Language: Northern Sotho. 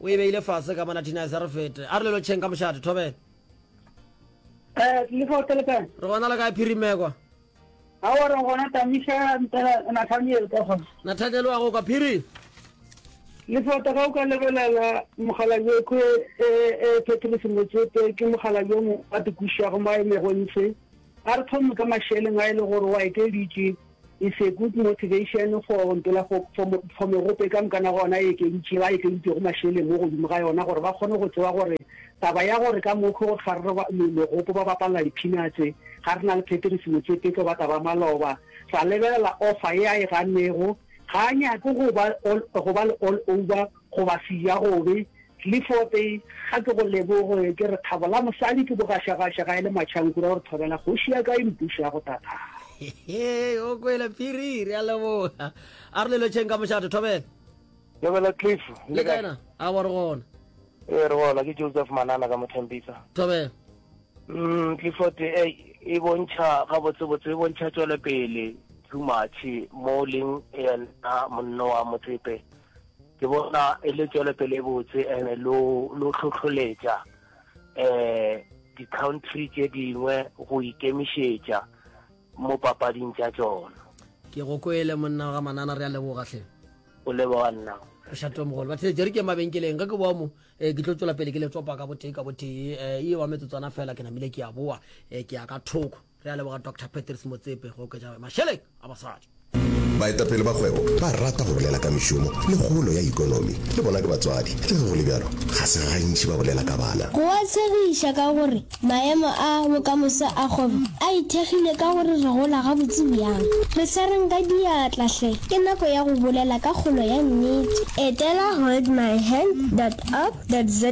o e beile fase ka mona tinase re fete a re lelo tšheng ka mošate thobela eh, re gona le kae phirimekwa nathaniel wa go ka phiri lefata ga o ka lebelela mogala yoko e, e, e petrus motsete ke mogala yo mo a tikušago mo a emego ntshe a re thome ka mašeleng a e le gore wa ekeditše It's a good motivation for mpela for for megope ka mokana gona e ekeditše ba ekeditšego mašeleng mo godimo ga yona gore ba kgone go tseba gore taba ya gore ka mokho gore ga re megopo ba bapalla diphinatse ga re na le Patrice Motsepe tlo ba taba maloba ra lebelela offer e a e gannego ga a nyake go ba go ba le all over Goba Siya Gobe le fo te ga ke go leboge ke re thabo la mosadi ke bogašagaša ga e le matšhankura gore thobela kgoši ya ka e mpuša go tatara. Hehe, o kwele phiri, re a leboga. A re le lotšheng ka mošate, Thobela. Thobela Cliff, le kae? Na? A bo re gona. E re gona, ke Joseph Manana ka Mothempisa. Thobela. Mm, Clifford e e bontšha ga botse botse e bontšha tswele pele too much mo leng ena monno wa motsepe. Ke bona e le tšwelopele e botse ene lo lo tlhotlholetša um di-country tše dingwe go ikemišetša mo papading tša tšona. Ke go kwele monna ga manana re a leboga hle. O leboga nna. Re šate mogolo. Ba theletše re ke mabenkeleng ge ke boa mo eh, ke tlo tšwela pele ke le tsopa ka botee ka botee eh, e wa metsotswana fela ke namile ke a boa eh, ke ya ka thoko. Re a leboga Doctor Patrice Motsepe go oketša mašeleng a basadi. Baetapele ba kgwebo ba rata go bolela ka mešomo le kgolo ya ikonomi. Le bona ke batswadi. Le ge go le bjalo, ga se gantši ba bolela ka bana. Go a tshegiša ka gore maemo a bokamoso a kgwebo a ithekgile ka gore re gola gabotse bjang. Re swareng ka diatla hle! Ke nako ya go bolela ka kgolo ya nnete. Etela holdmyhand dot org dot za.